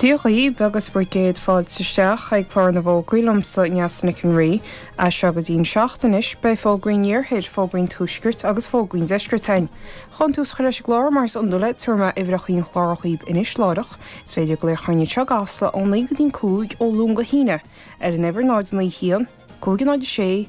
Dia dhaoibh agus bhur gcéad fáilte isteach ag Clár na bhFógraí liomsa, Neasa Nic an Rí. As seo go dtí'n seacht anois, beidh fógraí'n iarthair, fógraí'n tuaiscirt agus fógraí'n deiscirt againn. Chun tús a chur leis an gclár mar is iondúil tabharfaidh mé uimhreachaí'n chláir dhaoib anois láithreach. Is féidir glaoch orainne i gCasla, ó naoi go dtí'n cúig, ó Luan go hAoine, ar an uimhir 091, 506,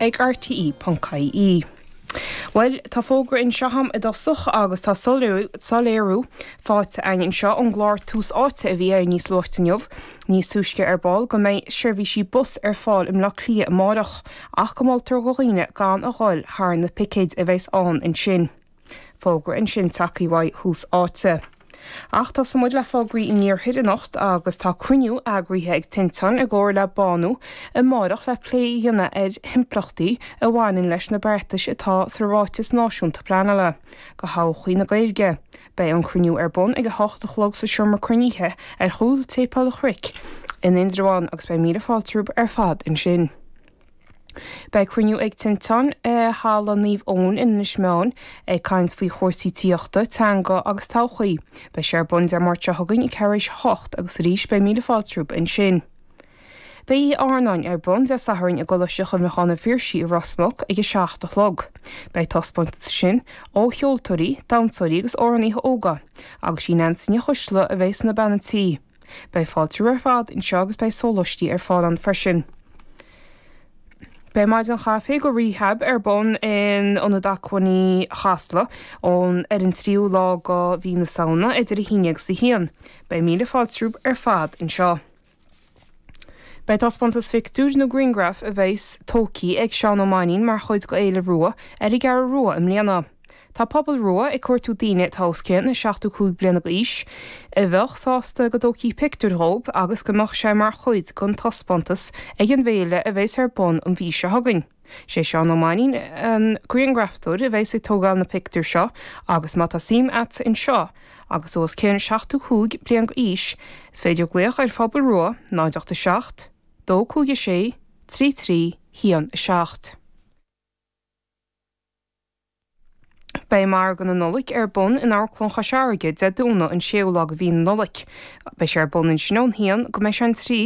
ag RTÉ.ie. Bhuel, tá fógra anseo agam i dtosach agus tá soiléiriú faighte agam anseo ón gclár Tús Áite a bhí air níos luaite inniu, nó níos túisce ar ball, go mbeidh seirbhísí bus ar fáil i mBleá Cliath amárach ach go moltar do dhaoine gan a dhul thar na picéid a bheas ann ansin. Fógra ansin tagthaí uaidh Tús Áite. Ach tosóidh muid le fógraí an Iarthair anocht agus tá cruinniú eagraithe ag Tinteán i gcomhar le Bánú amáireach le plé a dhéanamh ar na himpleachtaí a bhaineann leis na beartais atá sa Ráiteas Náisiúnta Pleanála do thodhchaí na Gaeilge. Beidh an cruinniú ar bun ag a hocht a chlog sa seomra cruinnithe ar chúl tSéipéal an Chnoic in Indreabhán agus beidh míle fáilte romhaibh ar fad ansin. Beidh cruinniú ag Tinteán i Halla Naomh Eoin in Inis Meáin ag caint faoi chúrsaí tithíochta, teanga agus todhchaí. Beidh sé ar bun Dé Máirt seo chugainn ag ceathrú tar éis a hocht agus arís beidh míle fáilte romhaibh ansin. Beidh Oíche Áirneáin ar bun Dé Sathairn i gColáiste Chuimhneacháin an Phiarsaigh i Ros Muc ag a seacht a chlog. Beidh taispeántas ansin ó cheoltóirí, damhsóirí agus amhránaíthe óga. Agus is í Neansaí Ní Choisdealbha a bheas ina bean an tí. Beidh fáilte romhaibh ar fad anseo agus beidh sólaistí ar fáil ann freisin. Beidh maidin chaife do Rehab ar bun in Ionad Acmhainní Chasla ón ar an 3ú lá de Mhí na Samhna idir 11 agus 1. Beidh míle fáilte romhaibh ar fad anseo. Beidh taispeántas pictiúr nó griangraf a bheidhs tógthaí ag Seán Ó Mainnín mar chuid de Fhéile Rua ar an gCeathrú Rua i mbliana. Tá Pobal Rua ag cuartú daoine atá os cionn 75 bliana d'aois a bheadh sásta go dtógfaí pictiúr dhíobh agus go mbeadh sé mar chuid den taispeántas ag an bhféile a bheas ar bun an mhí seo chugainn. Sé Seán Ó Mainnín an griangrafadóir a bheas ag tógáil na bpictiúr seo agus má tá suim a't anseo agus tú os cionn 75 bliain d'aois is féidir glaoch ar Phobal Rua 0 8 7 2 5 6 3 3 1 7. Beidh Margadh na Nollaig ar bun in Amharclann Chois Fharraige, Dé Domhnaigh an 6ú lá de mhí na Nollaig. Beidh sé ar bun ansin ón a haon go mbeidh sé an trí.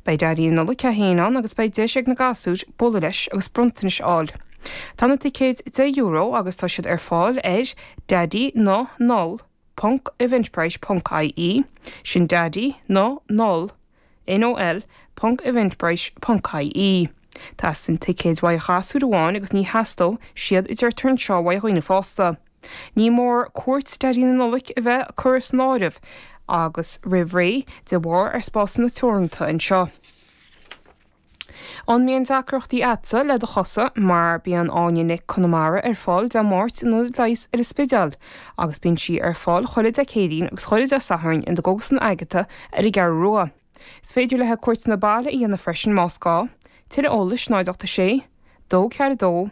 Beidh Daidí na Nollaig é féin ann agus beidh deis ag na gasúir bualadh leis agus bronntanais a fháil. Tá na ticéid €10 agus tá siad ar fáil ar Daidí na Noll. ponc eventbrite ponc ie, sin Daidí na Noll. NOL ponc Eventbrite.ie Teastaíonn ticéid uaidh ghasúir amháin agus ní theastódh siad a deirtear anseo uaidh dhaoine fásta. Ní mór cuairt Daidí na Nollaig a bheith curtha san áireamh agus roimh ré de bharr ár spásanna teoranta anseo. An mbíonn deacrachtaí agatsa le do chosa mar bíonn Áine Nic Conamara ar fáil Dé Máirt in Ionad Leighis ar an Spidéal agus bíonn sí ar fáil chuile Dé Céadaoin agus chuile Dé Sathairn i gCógaslann Agata ar an gCeathrú Rua. Is féidir leithe cuairteanna baile a dhéanamh freisin más gá. Tuilleadh eolais 086 242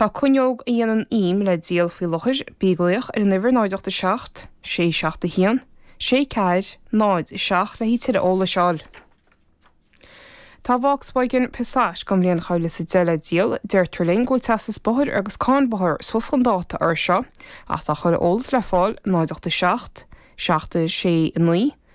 Tá cuinneog a dhéanann ím le díol faoi láthair, bí ag glaoch ar an uimhir 087 671 6407 le tuilleadh eolais a fháil. Tá Volkswagen Passat don mbliain dhá mhíle is a deich le díol, deirtear linn go bhfuil teastas bóthair agus cáin bóthair suas chun dáta air seo agus tá tuilleadh eolais le fáil 087 769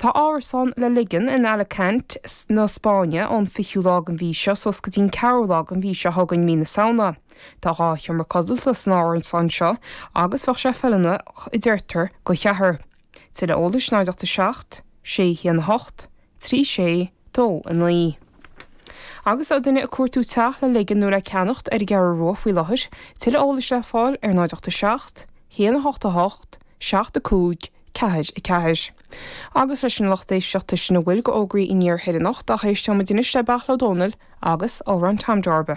Tá árasán le ligean in Alacant na Spáinne ón 20ú lá den mhí seo suas go dtí an 4ú lá den mhí seo chugainn, Mí na Samhna. Tá dhá sheomra codlata san árasán seo agus bheadh sé feiliúnach a deirtear do cheathrar. Tuilleadh eolais 0 8 7, 6 1 8, trí sé dó a naoi. Agus tá duine ag cuartú teach le ligean nó le ceannacht ar an gCeathrú Rua faoi láthair. Tuilleadh eolais le fáil ar 0 87 1 8 8 7 5 4 4. Agus leis sin a lucht éisteachta sin a bhfuil de fhógraí aniar thoir anocht ach éisteoidh muid anois le Beartla Ó Domhnaill agus Amhrán Tom Darba.